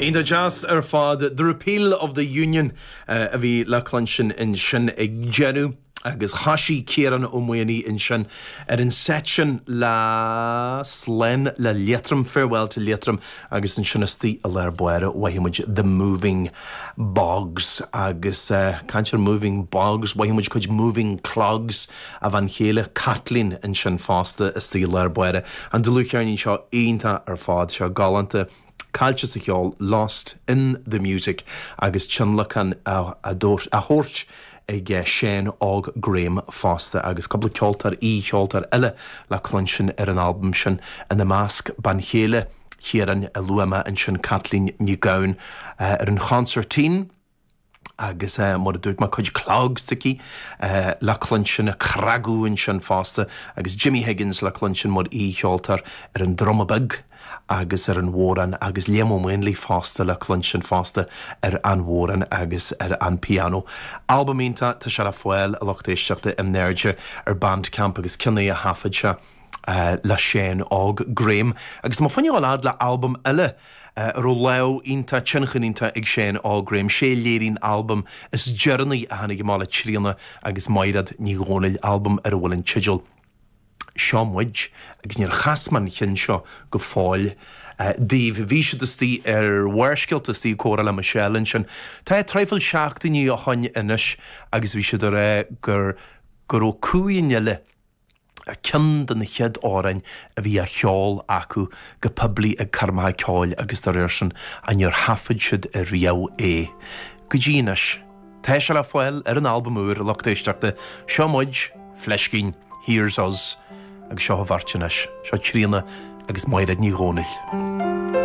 Iontach deas ar fad. The Repeal of the Union a bhí le cluinstin ansin ag deireadh agus thosaigh Ciarán Ó Maonaigh ansin ar an seit sin le Slán le Liatroim, Farewell to Leitrim agus ansin istigh i lár báire mhothaigh muid The Moving Bogs agus caint ar Moving Bogs mhothaigh muid cuid Moving Clogs. a bhean chéile Caitlín ansin fosta istigh i lár báire, an dlúthcheirnín seo iontach ar fad seo, galánta, Caillte sa Cheol, Lost in the Music, agus tionlacan á thabhairt ag Seán Óg Graham fosta agus cúpla ceoltóir, aoi-cheoltóir eile le cluinstin ar an albam sin, ina measc bean chéile Chiaráin a luaigh mé ansin, Caitlín Nic Gabhann ar an chonsairtín. agus mar a dúirt mé, cuid clogs aici le cluinstin, ag cnagadh ansin fosta agus Jimmy Higgins le cluinstin mar aoi-cheoltóir ar an druma beag agus ar an bhodhrán agus Liam Ó Maonlaí fosta le cluinstin fosta ar an bhodhrán agus ar an pianó. Albam iontach, tá sé le fáil, a lucht éisteachta, in airde ar Bandcamp agus ceann é a thaifead sé, le Seán Óg Graham agus muidinne ag gabháil a fhad le albam eile a raibh lámh iontach, tionchar iontach ag Seán Óg Graham, sé a léirigh an albam is deireanaí a tháinig amach le Tríona agus Maighread Ní Dhomhnaill, albam ar a bhfuil an teideal Seo Muid agus níor chas mé an ceann seo go fóill daoibh. Bhí siad istigh ar Bharrscéalta, istigh ag comhrá le Michelle ansin tá traidhfil seachtainí ó shoin anois agus bhí siad a rá gur go raibh Cumha an Fhile, ar cheann de na chéad amhráin a bhí á cheol acu go poiblí ag coirmeacha ceoil agus dá réir sin a níor thaifead siad i riamh é go dtí anois. Tá sé le fáil ar an albam úr, a lucht éisteachta Seo Muid, Fleiscín, Here's Us agus seo an bheirt anois, seo Tríona agus Maighread Ní Dhomhnaill.